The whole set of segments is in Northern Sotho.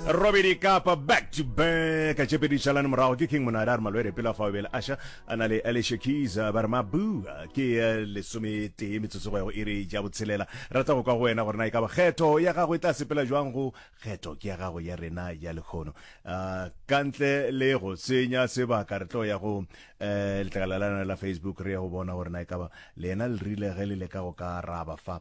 robedi kapa back to back a tšepedi šalane morago ke king monada a re malwere pela fa o bele aša a na le alicia keys ba re mabua ke eh, lesometee metsotso go ya go iri ja botshelela rata go kwa go wena gore na e ka ba kgetho ya gago e tla sepela jwang go kgetho ke ya gago ya rena ya lekgono Ah, ka ntle le go senya sebaka re tlo ya go eh, letlakala la lena la facebook re ya go bona gore na e ka ba lena le rile ge le leka go ka araba fa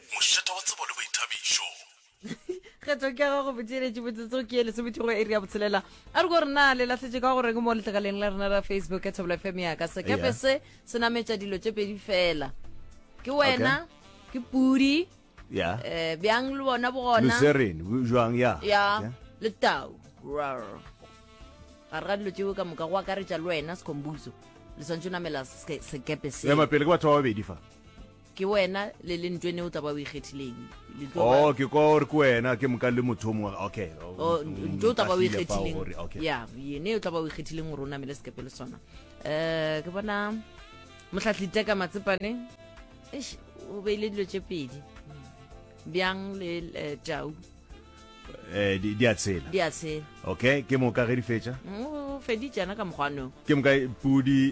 Mošeta wa tsebo le boithabišo. kgetho ke ya gago botšeletše botsotso ke ye lesomethigo ya iri ya botshelela a re ko gore na le lahletše ka gore ke mo letlakaleng la rena la facebook ya thobela fm yaka sekepe Yeah. se se nametša dilo tše pedi fela ke wena ke pudi ya um bjang le bona bogona luserin jwang ya ya le tau Rar. ga re ga dilo tšeo ka moka go akaretša le wena sekhombuso le swantse o namela seke- sekepe se ema pele ke batho ba babedi fa ke wena le le ntwene o tla ba o ikgethileng Le tlo ba- oh ke kwa gore ke wena ke moka le motho o mongwe okay o- o o- ntho o tla ba o nkahlile fao ikgethileng gore, okay ya yene o tla ba o ikgethileng gore o namele sekepe le sona um ke bona motlhatlhi teka matsepane eish, o beile dilo tše pedi bjang le eh, tau eh di di a tshela di a tshela okay ke moka ge di fetša Mm, o feditšana ka mokgwanong ke moka pudi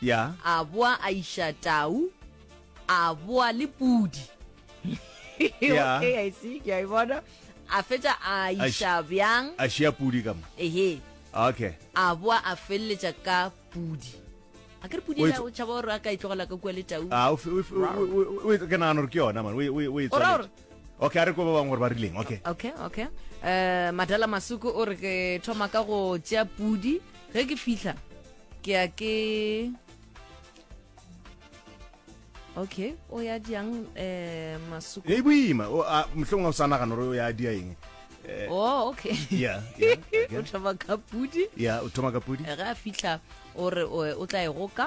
Ya. A boa a iša tau, a boa le pudi. Ya. Okay, I see, ke a e bona. A fetša a A š- iša bjang? A šea pudi ka mo. Ehe. Okay. A boa a feleletša ka pudi. A ke re pudi O ela etso- o tšhaba gore a ka e tlogela ka kua le tau. Ah, o fe- o fe- o- o- o- o- ke nagana gore ke yona man o e- o e- o e O ra tswaletše. gore- okay a re ko ba bangwe gore ba rileng okay okay okay eh madala masuku o re ke thoma ka go tšea pudi ge ke fihla ke ya ke okay o ya diang eh masuku e boima o a mohlong o sa nagana gore o ya dia eng eh, oh okay yeah yeah okay. o thoma ka pudi yeah o thoma ka pudi ge a fihla o re o tla e goka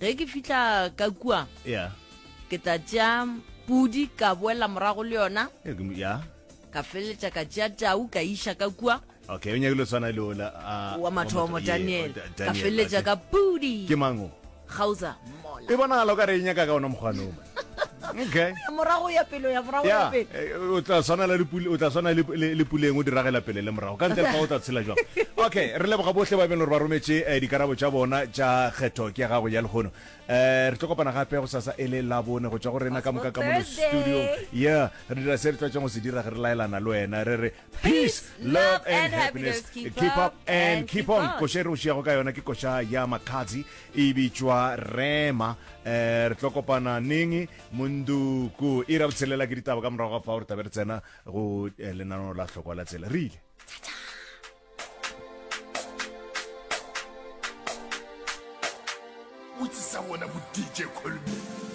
ge ke fihla ka kua yeah ke tla tšea pudi ka boela morago le yona Eh, ke mo- yeah ka feleletša ka tšea tau ka iša ka kua okay o nyake lo tshwana le ola ah, wa mathomo yeah, daniel Da- ka Daniel, feleletša okay. ka pudi ke mango gauza mola e bonagala o ka re e nyaka ka ona mokgwanoma okay morago ya pelo ya morago ya pelo eh, o tla swana le pule o tla swana le puleng o diragela pele le morago ka ntle fa o tla tshela jwa okay re leboga bohle ba beng gore ba rometse eh, dikarabo tsa bona tsa kgetho ke ya gago ya legono eh re tlo kopana gape go sasa ele la bone go tswa go rena ka moka ka mo studio yeah re dira se re tlwatseng go se dira ge re laelana le wena re re peace love and happiness keep up and keep on koša e re o šiago ka yona ke koša ya makhatsi e bitšwa rema um re tlo kopana neng monduku e ra botshelela ke ditaba ka morago ga fa gore tabe re tsena go eh, lenaneo la tlhokwa la tsela re ile botsisa wona bo dj colby